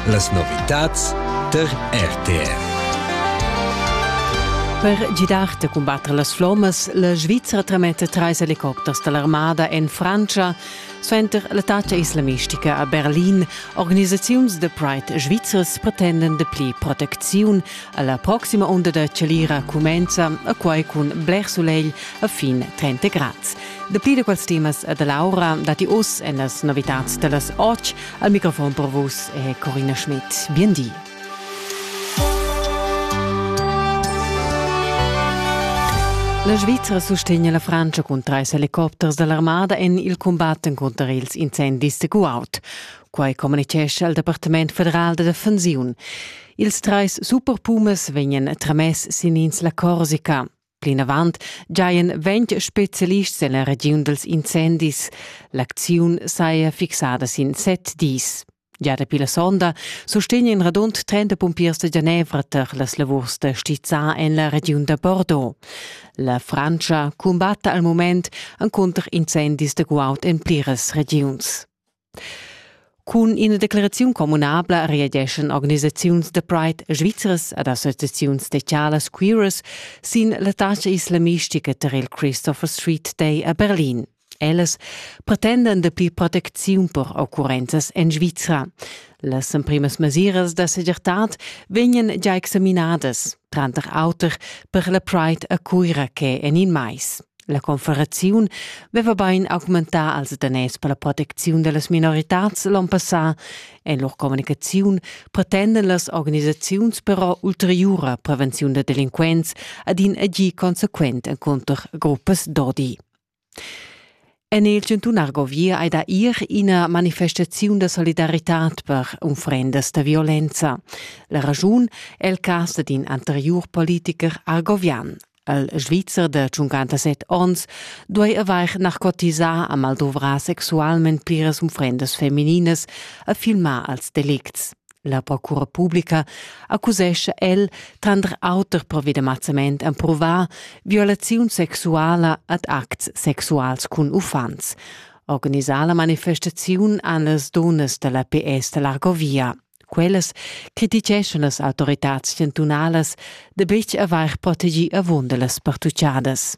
Las novitads tar RTR. Per gidar da cumbatter las flommas, la Svizra trametta trais helicopters da l'armada en Frantscha suenter l'attacca islamistica a Berlin. Organisaziuns da Pride svizras pretenden de pli protecziun. La proxima onda da chalira cumenza a quai cun bler sulegl a fin 30 grads. Dapi da quels temas e da l'aura datti oz en las novitads da las 8 al microfon per vus è Corinna Schmidt. Bien di. La Svizzera sustegna la Francia cun trais helicopters dall'armada en il cumbat cunter ils incendis da Kuwait. Quai communicescha il Departament federal da defensiun. Ils trais superpumas vegnan tramess sin ins la Corsica. Plinavant giajan ventg spezialists en la regiun dals incendis. L'acziun saja fixada sin set dis. Gia dapi la sonda sustegna in radund 30 pumpiers da Genevra tar las lavurs da stizzar en la regiun da Bordeaux. La Frantscha cumbatta al mument encunter incendis da guaud en pliras regiuns. Cun ina decleraziun communabla reageschan organisaziuns da Pride svizras ed associaziuns socialas queeras sin la tascha islamistica tar il Christopher Street Day a Berlin. Ellas pretendan dapi protecziun per occurrenzas en Svizra. Las emprimas mesiras da segirtad vegnan già examinadas. tranter auter per la Pride a Cuira che en in mais. La confederaziun veva bein augmentà als danès per la protecziun dellas minoritads l'on passà. En lur communicaziun pretenden las organisaziuns però ulteriura prevenziun da delinquents ad in agir consequent encunter gruppas d'odi. En il chantun Argovia ei da ir ina manifestaziun da solidaritad per unfrendas da violenza. La raschun è il cas d'in anteriur politiker argovian. El svizzer de 57 onns duei avair narcotisà a mal dovrar sexualment pliras unfrendas femininas a filmar als delicts. La procura publica accusescha el, tranter auter provi de mazzament emprovà, violaziun sexuala ad acts sexuals cun uffants. Organisà la manifestaziun an las donas da la PS da l'Argovia. Quellas criticeschan las autoritads chantunalas de betg avair protegì avunda las partuchadas.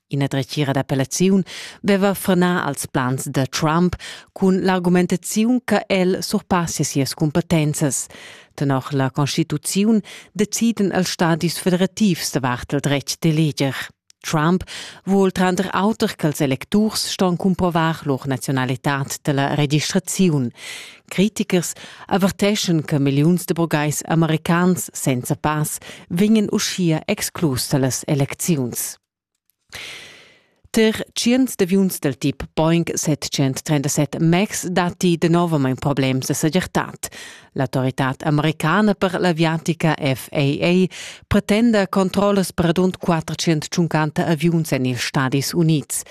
Ina dretgira d'appellaziun veva frenà als plans da Trump cun l'argumentaziun che el surpassia sias cumpetenzas. Tenor la constituziun deciden els stadis federativs davart il dretg d'eleger. Trump vuol tranter auter ch'els electurs ston cumprovar lur nazionalitad della registraziun. Critichers averteschan che milliuns de burgais americans senza pass vegnan uschia exclus dallas elecziuns. Ter tschients d'aviuns dal tip Boeing 737 MAX datti danovamein problems da segirtad. L'autoritad americana per l'aviatica FAA pretenda controllas per adund 450 aviuns en ils Stadis Unids.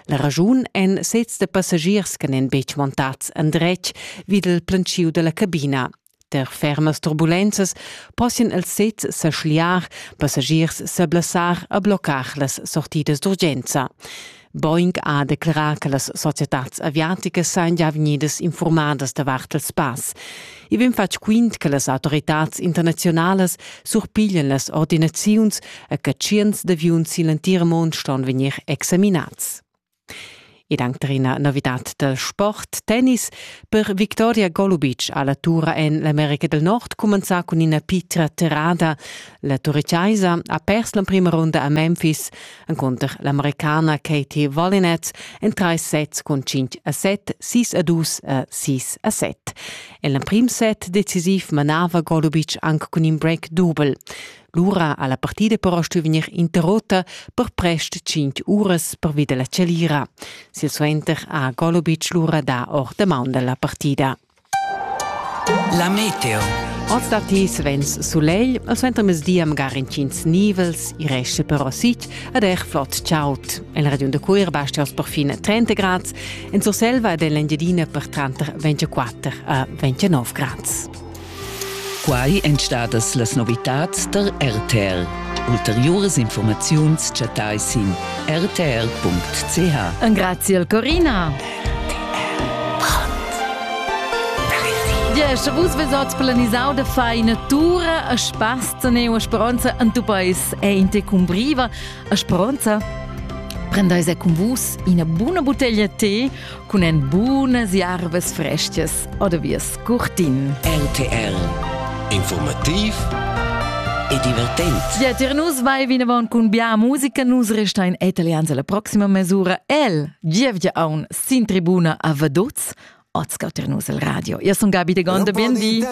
La raschun èn sezs da passagiers che n'èn betg montads endretg vid il planschiu dalla cabina. Per fermas turbulenzas possian els sezs sa schliar, passagiers sa blessar e bloccar las sortidas d'urgenza. Boeing ha declerà che las societads aviaticas sajan già vegnidas informadas davart il spass. I vegn fatg quint che las autoritads internaziunalas surpiglian las ordinaziuns e che tschients d'aviuns sin l'entir mund ston vegnir examinads. ed anc tar ina novidad da sport, tennis. Per Victoria Golubic ha la tura en l'America del Nord cumenzà cun ina pitra terrada. La turitgaisa ha pers l'emprima runda a Memphis encunter l'Americana Katie Valinets en trais sets cun 5 a 7, 6 a 2 e 6 a 7. En l'emprim set decisiv manava Golubic anc cun in break dubel. Lura ha la partida però stuì vegnir interrutta per prest tschintg uras pervi da la chalira. Silsuenter ha Golubic lura dà or da maun da la partida. La meteo. Oz datti svens sulegl, al suentermezdi amgar intgins nivels, i resta però sit ed er flot chaud. En Radion da Cuir basta oz perfin 30 grads, en Surselva ed en l'Engiadina per tranter 24 a 29 grads. Quai èn stadas las novitads tar RTL. Ulteriuras informaziuns chattai sin rtr.ch. Engraziel Corina. Sche vus vesot planisau da fai natura a spazza ne a speranza en tu pais è in te cumbriva a speranza Prendeis e con vus ina buna bottiglia tè cun en bunas jarvas freschias oder wie curtin. RTR Informativ e divertent. Ja, dir nus vai vinavon cun bia musica, nus resta in italians alla prossima mesura. El, gievgia aun sin tribuna a Vaduz, ascolter nus el radio. Io sun Gabi de Gonda, bindi.